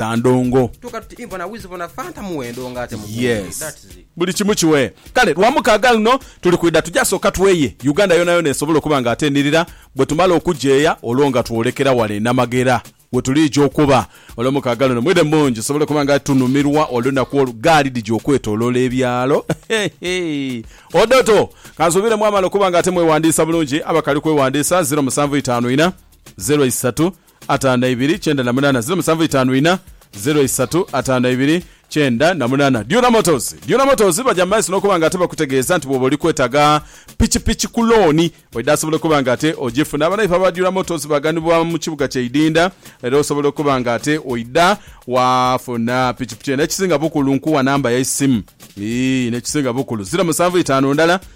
Tandongo. Tuka tuti Ivo na Wiz bona Fanta muwendo nga ate mugungi. Yes. That's it. Buli kimu kiwee. Kale Lwamukaaga luno tuli kwidha tuja sooka tweye Uganda yonayona esobola okuba nga ate enirira. Bwetumala okugyeya olwo nga twolekera wale e Namagera wetuliija okuba. Olwomukaaga luno mwidhe mungi tusobole okuba nga tunumirwa olunaku olwo gaali dhija okwetoloola ebyalo. Heehee. Odoto. Kansuubire mwamala okuba nga ate mwewandiisa bulungi. Abakali kwewandiisa ziro musanvu itaanu ina, zero isatu, ataano na ibiri kyenda na munaana ziro musanvu itaanu ina ziro isatu ataano na ibiri kyenda na munaana. Dura Motors, Dura Motors baja mu maiso n'okuba nga ate bakutegeeza nti bw'oba oli kwetaaga pikipiki ku looni edhaasobola okuba nga ate ogifuna, banaife aba Dura Motors baghanibwa mu kibuga kya Idinda era osobola okuba nga ate oidha waafuna pikipiki eno. Ekisinga bukulu nkuwa namba yaisimu? Ii, n'ekisinga bukulu ziro musanvu itaanu ndala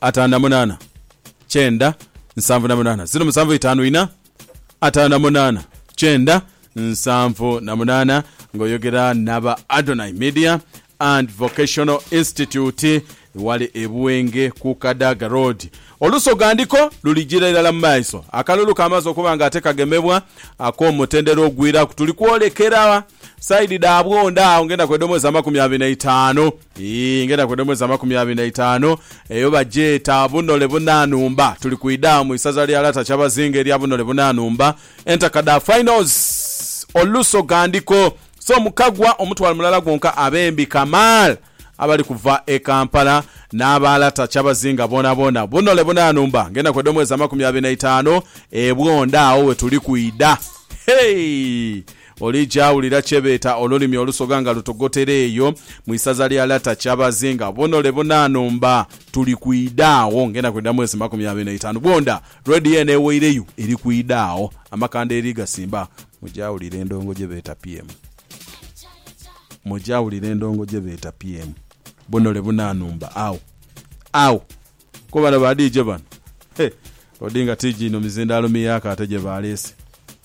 ataanu na munaana kyenda nsanvu na munaana ziro musanvu itaanu ina ataanu na munaana kyenda nsanvu na munaana ng'oyogera naba Adonai Media and Vocational Institute wali e Buwenge ku Kadaga Road. Oluso ghandiko lulijira irala mu maiso akalulu kamaze okuba nga ate kagemebwa ak'omutendera ogwiraku. Tuli kwolekera Side dhabwo nda agho ngenda kweda omwezi amakumi abiri na itaanu ii ngenda kweda omwezi amakumi abiri na itaanu eyo bagyeta Bunole Bunanumba tuli ku idaamu isaza lya Lata Kyabazinga erya Bunole Bunanumba entaka dha finals oluso ghandiko so mukagwa omutwalo mulala gwonka abembi Kamaal abali kuva e Kampala n'aba Lata Kyabazinga boonaboona Bunole Bunanumba ngenda kweda omwezi amakumi abiri na itaanu ebwo nda agho wetuli kwida hey! Olija wulira kye beeta olulimi olusoga nga lutogotera eyo mu isaza lya Lata Kyabazi nga bonole bonaano mba tuli kwida agho ngenda kwida mwezi makumi abiri n'eitaanu bwonda Radio eno eweireyo eri kwida agho amakanda eri gasimba Muja wulira endongo gye beeta PM Muja wulira endongo gye beeta PM Bonole bonaano mba agho agho Ko bano ba DJ bano He Odinga TG ino mizindaalo miyaaka ate gye baleese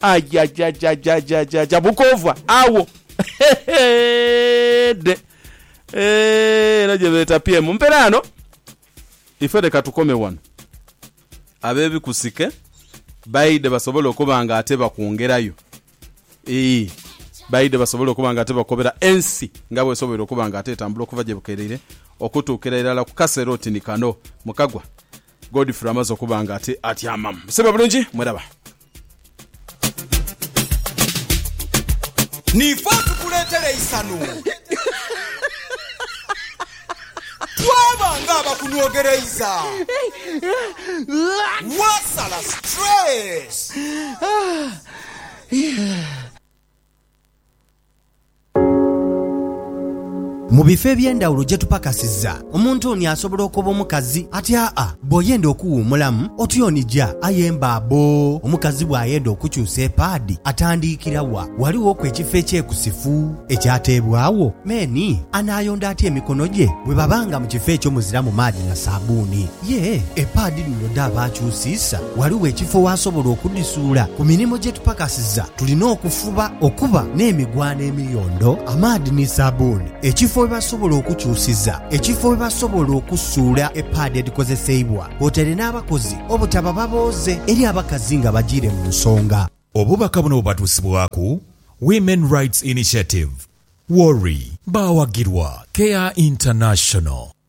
Ajajajajajajaja bukoovwa agho heheedhe eeh eno gyebeeta pyemu mperaano ife leka tukome wano abebikusike baidhe basobole okuba nga ate bakwongerayo eeh baidhe basobole okuba nga ate bakobera ensi nga bwesoboire okuba nga ate etambula okuva gyebukereire okutuukira irala kukasera oti ni kano mukagwa Godfrey amaze okuba nga ati atyamamu. Musebe bulungi, mweraba. Niife atukuleetera eisanhu. Twaba ng'abakunwogereiza. Waasala stress. Mu bifo eby'endhawulo gye tupakasiza, omuntu oni asobola okoba omukazi ati, Aa, bw'oyenda okuwuumulamu, otyonija. Aye mbaabo! Omukazi bw'ayenda okukyusa epaadi, atandiikira wa? Ghalighoku ekifo ekyekusifu ekyateebwagho? Meni anaayonda atya emikono gye bwe baba nga mu kifo ekyo muziramu maadhi na saabbuuni? Ye epaadi dhino dhaaba nkyusiisa? Ghaligho ekifo w'asobola okudhisuula? Ku mirimu gye tupakasiza tulina okufuba okuba n'emigwano emiyondo, amaadhi ni sabuuni, ekifo we basobola okukyusiza, ekifo we basobola okusuula epaadi edhikozeseibwa kwotaire n'abakozi obutaba babooze eri abakazi nga bajiire mu nsonga. Obubaka buno bubatuusibwaku Women Rights Initiative, WORI. Baawagirwa Care International.